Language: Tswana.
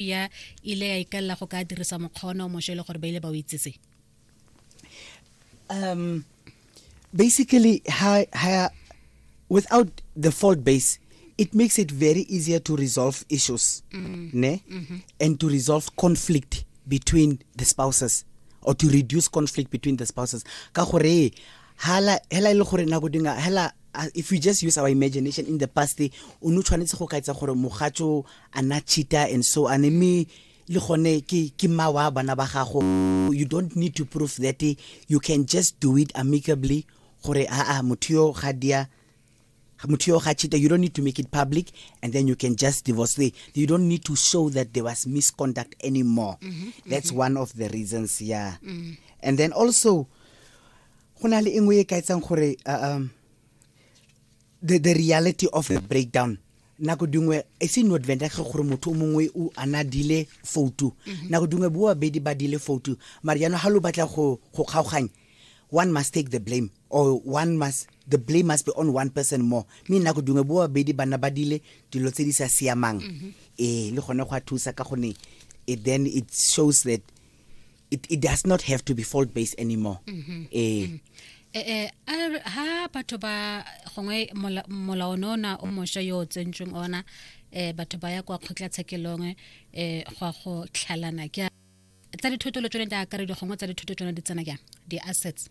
ya ile ya ikalela go ka dirisa mokgono mosho e le gore ba ile ba o itsese um basically ha ha without the fault base it makes it very easier to resolve issues mm. ne mm -hmm. and to resolve conflict between the spouses or to reduce conflict between the spouses ka gore hala hela ile e gore nako dinga hela uh, if we just use our imagination in the past o no tshwanetse go kaitsa gore mogatso a na cheater and so ane mme le gone ke ke mma wa bana ba gago you don't need to prove that you can just do it amicably gore aa motho yo ga dia motho yo ga cheater you don't need to make it public and then you can just divorce the you don't need to show that there was misconduct anymore mm -hmm, that's mm -hmm. one of the reasons yeah mm -hmm. and then also go na le engwe e ka etsang gore uh, um the, the reality of the breakdown nako dingwe e se no adventa ge gore motho o mongwe o ana dile foutu mhm. nako dingwe bo babedi ba dile foutu mare jaanong ga lo batla go kgaoganya one must take the blame or one must the blame must be on one person more mme nako dingwe bo babedi bana ba dile dilo tse di sa siamang mhm. ee le gone go a thusa ka gone it then it shows that it, it does not have to be fault based anymore mm -hmm. eh mm -hmm. Eh, eh, er, ha batho ba gongwe molao ne ona o mosha yo o tsentsweng ona um batho ba ya kwa kgotlatshekelong um eh, go a go tlhalana ke tsa dithoto le tsone di akaredi gongwe tsa dithoto tsone di tsena jang di-assets